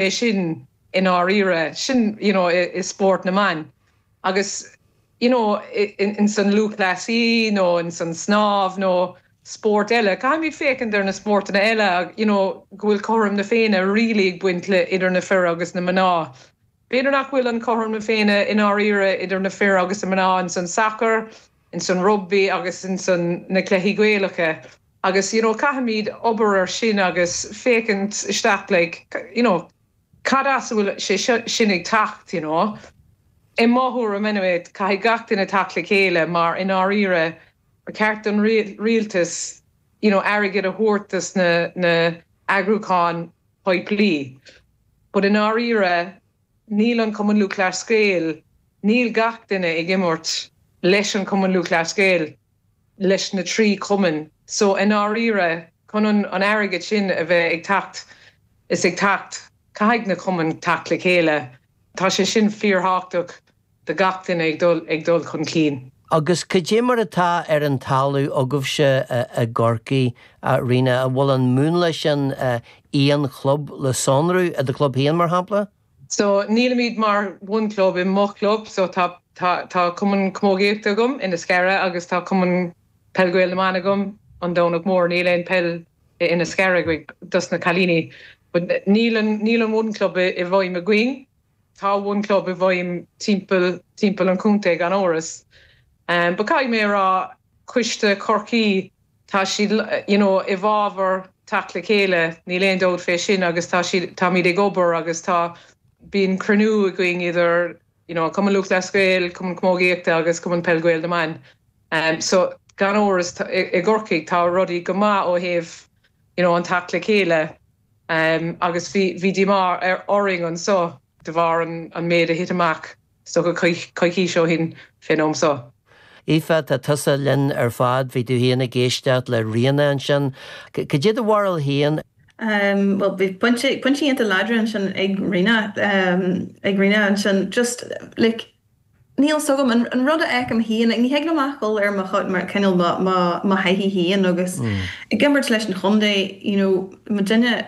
é sin i ndáiríre, sin you know i spórt na mban agus you know ins an lúthchleasaí nó ins an snámh nó spóirt eile, caithfimid féachaint ar na spórtanna eile you know go bhfuil cothrom na Féinne really ag baint le idir na fir agus na mná. B'fhéidir nach bhfuil an cothrom na Féinne i ndáiríre idir na fir agus na mná ins an sacar, ins an rugbaí agus ins na cluichí Gaelacha agus you know caithfimid obair ar sin agus féachaint isteach like you know cad as a bhfuil sé sin ag teacht you know. I mo thuairim anyway caithfidh gach duine teacht le chéile mar i ndáiríre ba cheart don rialtas you know airgead a thabhairt dos na na eagrúcháin poiblí but i ndáiríre Níl an Cumann Lúthchleas Gael, níl gach duine ag imirt leis an gCumann Lúthchleas Gael, leis na trí chumainn so i ndáiríre, chun an airgead sin a bheith ag teacht is ag teacht, caithfidh na cumainn teacht le chéile. Tá sé sin fíorthábhachtach. do gach duine ag dul, ag dul chun cinn. Agus cad é mar atá ar an talamh agaibhse i gCorcaigh, a Ríona? An bhfuil an múnla sin aon chlub le sonrú, i do chlub féin, mar shampla? So, nílimid mar one club i mo chlub, so tá, tá, tá Cumann Camógaíochta agam Inis Cara agus tá Cumann Peil Gael na mBan agam, An Domhnach Mór, níl aon peil in Inis Cara, ag, dos na cailíní. But níl an, níl an one club i bhfeidhm againn. Tá one club i bhfeidhm timpeall timpeall an chontae gan amhras but caithfidh mé a rá coiste Chorcaí tá siad you know i bhfabhar teacht le chéile níl aon dabht fé sin agus tá siad táimid ag obair agus tá bíonn cruinniú againn idir you know Cumann Lúthchleas Gael, Cumann Camógaíochta agus Cumann Peil Gael na mBan so gan amhras i gCorcaigh tá rudaí go maith ó thaobh you know an teacht le chéile. Agus bhí díomá orainn anseo de bharr an méid a thit amach is dócha coicís ó shin fén am seo. Aoife, tá tusa linn ar fad, bhí tú féin ag éisteacht le Ríona ansin. Cad é do bharúil féin? Bhuel, bhí pointí iontach láidre ansin ag Ríona, ag Ríona ansin, just, like, Níl fhios agam. An rud a fheicim féin, ní thig liom ach dhul ar mo chuid, mar cineál mo thaithí féin agus ag imirt leis an chontae, you know, muidinne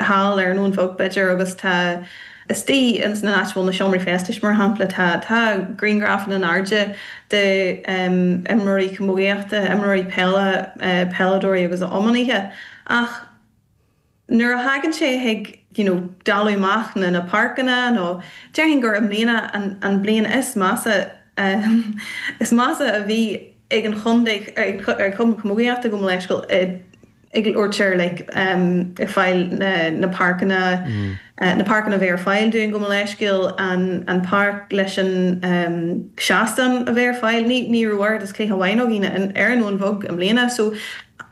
thall ar an Abhainn Bheag b'fhéidir agus tá istigh ins an áit a bhfuil na seomraí feistis mar shampla, tá, tá griangrafanna in airde de em, imreoirí camógaíochta, imreoirí peile, peileadóirí agus iománaithe ach. nuair a thagann sé chuig you know dáileadh amach na na páirceanna nó déarfainn gur i mbliana an an bhliain is measa ehm is measa a bhí ag an chontae ag ag Cumann Camógaíochta gabh mo leithscéal ag labhairt ar like ehm ag fáil na na páirceanna na páirceanna bheith ar fáil dúinn gabh mo leithscéal an an páirc leis an ehm seastán a bheith ar fáil ní ní raibh oiread is cluiche amháin againn ar an Abhainn Bheag i mbliana so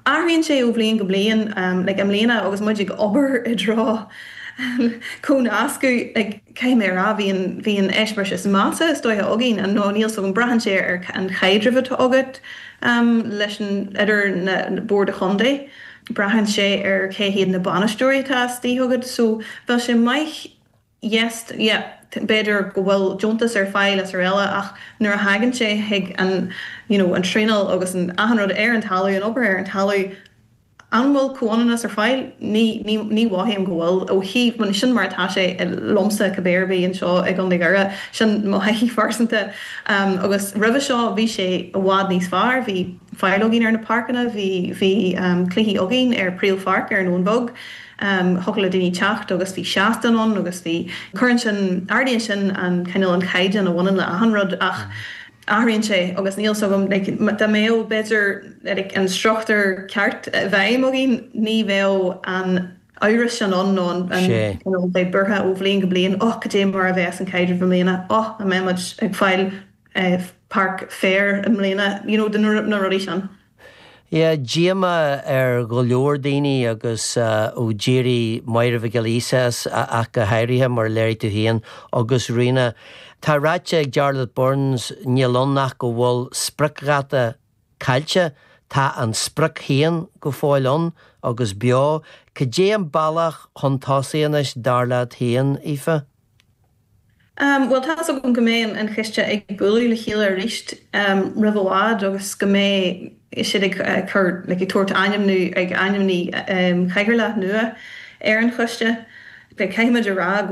Athraíonn sé ó bhliain go bliain, i mbliana agus muid ag obair i dtreo comhnascadh, caithfidh mé a rá, bhí an eispéireas is measa is dóiche againn, an nó níl 's agam, braitheann sé ar an chaidreamh atá agat leis an, idir na Boird Chontae, braitheann sé ar cé hiad na bainisteoirí atá istigh agat so bheadh sé maith, yes, yep, b'fhéidir go bhfuil deontas ar fáil is araile ach nuair a thagann sé chuig an you know an traenáil agus an achan rud ar an talamh, an obair ar an talamh, an bhfuil comhionannas ar fáil? Ní, ní, ní mhothaím go bhfuil ó thaobh, bhuel sin mar atá sé liomsa cibé ar bith anseo i gContae Dhoire, sin mo thaithí phearsanta. Agus roimhe seo bhí sé i bhfad níos fearr, bhí fáil againn ar na páirceanna, bhí, bhí cluichí againn ar phríomhpháirc, ar an Abhainn Bheag, thiocfadh le daoine teacht agus bhí seastán ann agus bhí, cuireann sin, ardaíonn sin an cineál, an caighdeán a bhaineann le achan rud ach athraíonn sé agus níl 'fhios agam, like, dá mbeadh, b'fhéidir, like, an struchtúr ceart i bhfeidhm againn ní bheadh an amhras sin ann nó an, an cineál bheith buartha ó bhliain go bliain, oh, cad é mar a bheas an caidreamh i mbliana, oh, an mbeimid ag fáil páirc féir i mbliana, you know, na rudaí sin. Bhí díomá ar go leor daoine agus ó d'éirigh Máire Mhic Giolla Íosa as, ach go háirithe, mar a léirigh tú féin, agus Ríona. Tá ráite ag Jarlath Burns, níl ann ach go bhfuil spriocdháta caillte, tá an sprioc féin go fóill ann agus beo. Cad é an bealach chun tosaigh anois, dar leat féin, Aoife? Bhuel, tá's agam go mbeidh an coiste ag bualadh le chéile arís roimh i bhfad agus go mbeidh siad ag cur, like ag tabhairt ainmniú, ag ainmniú cathaoirleach nua ar an choiste. Caithfimid a rá go.